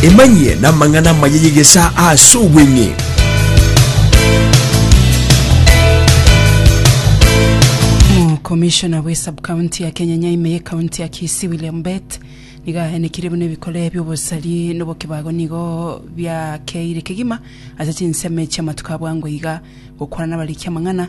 emanyie namang'ana amaya yegesa ase obweng'e Commissioner bwe sub county ya Kenya Nyaime ye county ya Kisii William Bet nigo aenekire buna ebikore bi'obosari nobokibago nigo biakeire kegima ase chinsemo echi'amatuko abwango iga gokwana nabarikia amang'ana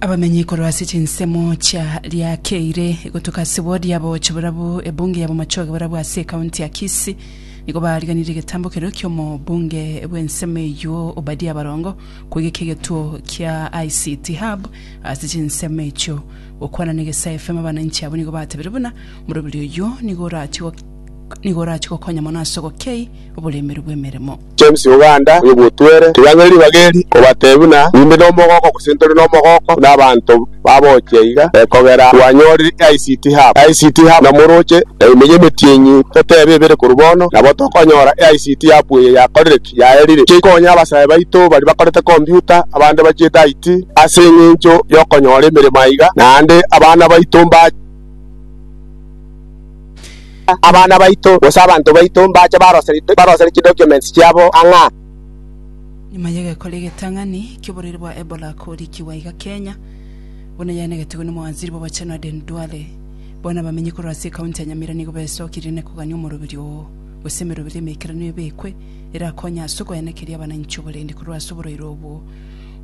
Abamenyi korwa ase chinsemo chia riakeire gotuka ase wodi ya bogochi borabu ebunge ya bomachoge borabu ase ekaunti ya Kisii nigo bariganirie egetambo keria ki'omobunge bw'ensemo eyio Obadia Barongo kwegeka egetuo kia ICT Hub ase chinsemo echio. Gokwana na Egesae FM abananchi abwo nigo batebirie buna morobiri oyio nigo orachie nigo orachie gokonya mono ase ogokei oboremeru bw'emeremo. James Uganda, oyo bw'Otwere, Toyang'ire ribaga eri kobateebia buna nimbe nomogooko gose ntore nomogooko buna abanto babochia iga ekogera twanyorire ICT Hub. ICT Hub na moroche na emeyo emetienyi toteebe ebere korwa bono, nabo tokonyora ICT Hub eye yakorire ki? Yaerire ki ekonye abasae baito baria bakorete kompyuta, abande bachiete IT ase eng'encho y'okonyora emeremo aiga, naende abana baito mba. abana baito, gose abanto baito mbache baroseri- barosere chidocuments chiabo ang'aa. Nyuma y'egekora egetang'ani ki'oborwaire bwa Ebola korikigwa iga Kenya, buna yaenegetigwe n'omowaziri bw'obochenu Aden Duale, bono abamenyi korwa ase ekaunti ya Nyamira nigo baesokirie na kogania omoroberio oo, gose emeroberio emeikeranu ebekwe erakonye ase okoenekeria abananchi oborendi korwa ase oborwaire obwo.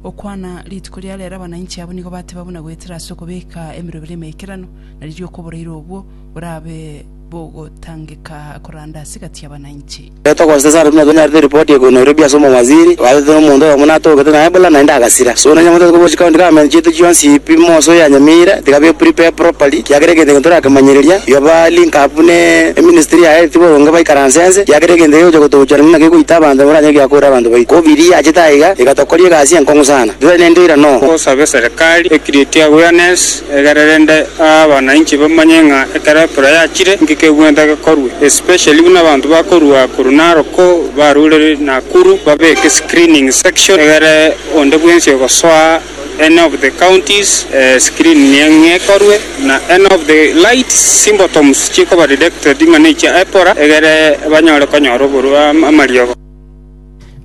Gokwana rituko ria rero abananchi abwo nigo bateba buna goetera ase okobeka emeroberio emeikeranu, na riria okoboreirwe obwo borabe bogotangeka koranda ase egati y'abananchi. Ekero togosesa ase buna tonyarete eripoti ekorwa Nairobi ase omowaziri, oagete nomonto oyomo natogete naye buna naende agasira. So na nyamotete kobua chicounty government chiaito chionsi pi moso oyanyamire tiga be prepared properly kiagera egento ekio torakemanyereria igo ba link up ne eministry ya health boronge baikaranse ense kiagera egento ekio gegocha gotogochora naki gegoita abanto nabo baranyare koira korera abanto baito. Covid eye yachete aiga iga tokoria egasi enkong'u sana titari nende oira no. Tosabe serikali e create awareness Egere rende abananchi bamanye ng'a ekero epura yachire, inki kegwenta gekorwe, especially buna abanto bakorua korwa Naroko barure Nakuru babeke screening section egere onde bwensi ogosoa any of the counties screening eye ekorwe na any of the light symptoms chikoba detected ng'a nechia epura egere banyare konyora oborwa amariogo.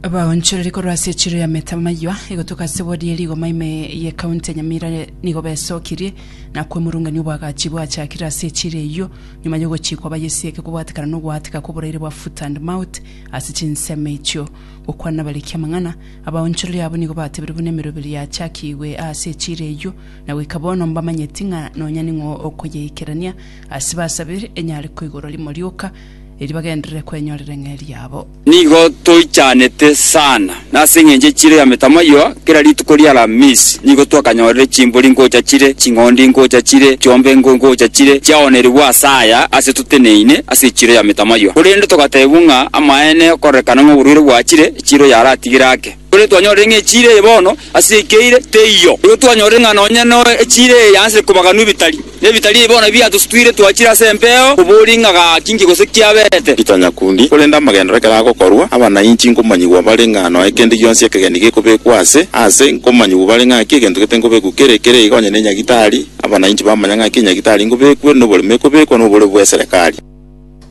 Abaonchoreri korwa ase echiro ya Metamaywa egotoka ase wodi ye rigoma ime ye county ya Nyamira nigo besokirie na kwemurungania obwagachi bwachakire ase echiro eyio nyuma yogochikwa bayesieke kobwatekana nogoatika koboraire bwa foot and mouth ase chinsemo echio. Gokwana nabariki amang'ana, abaonchoreri abo nigo batebire buna emeroberi yachakigwe ase echiro eyio na goika bono mbamanyeti ng'a nonya ning'o okoyeikerania ase basabire enyare koigorwa rimo rioka eri bagenderere kwenyorera eng'eria yabo. Nigo toichanete sana, na ase engencho ye chiro ya metamaiywa, kera rituko ri'Alamisi nigo twakanyorire chimbori ngocha chire, ching'ondi ngocha chire, chiombe engo ngocha chire, chiaoonerigwe ase aya ase toteneine ase chiro ya metamaiywa. Korende togatebwa ng'a amaene okorekana ng'a oborwaire bwachire, chiro yaratigire ake. Korende twanyorire ng'a echiira eye bono ase ekeire teiyo. Igo twanyorire ng'a nonya noe echiira eye yaanchire kobaganwa ebitari, na ebitari ebi bono biatosutwire twachire ase empeo koboria ng'a gaki inki gose kiaberete. Peter Nyakundi, Korende amagenderero ekero agokorwa, abanainchi nkomanyigwa bare ng'a nonya kende gionsi ekegeni gekobekwa aase aase, nkomanyigwa bare ng'a ng'aki egento gete nkobekwa kere kere iga onye ne enyagitari, abanainchi bamanya ng'aki enyagitari nkobekwe, na oborimo ekobekwa, na oboreu bw'eserekari.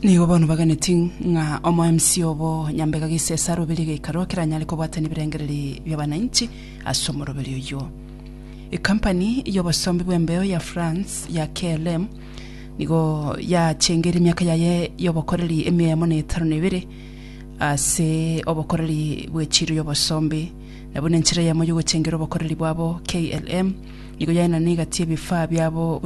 Nigo bono baganeti ng'a omoemsi obo nyambega gisesa roberie geikaro keranyare kobwata nebirengereri bi'abananchi ase omoroberio oyio. Ekampani y'obosombi bw'embeo ya France ya KLM nigo yachengeire emiaka yaye y'obokoreri emiemo na etano na ebere ase obokoreri bwe chiiro y'obosombi, na buna enchera eyemo y'ogochengera obokoreri bwabo, KLM nigo yaenana na egati y'ebifaa biabo buna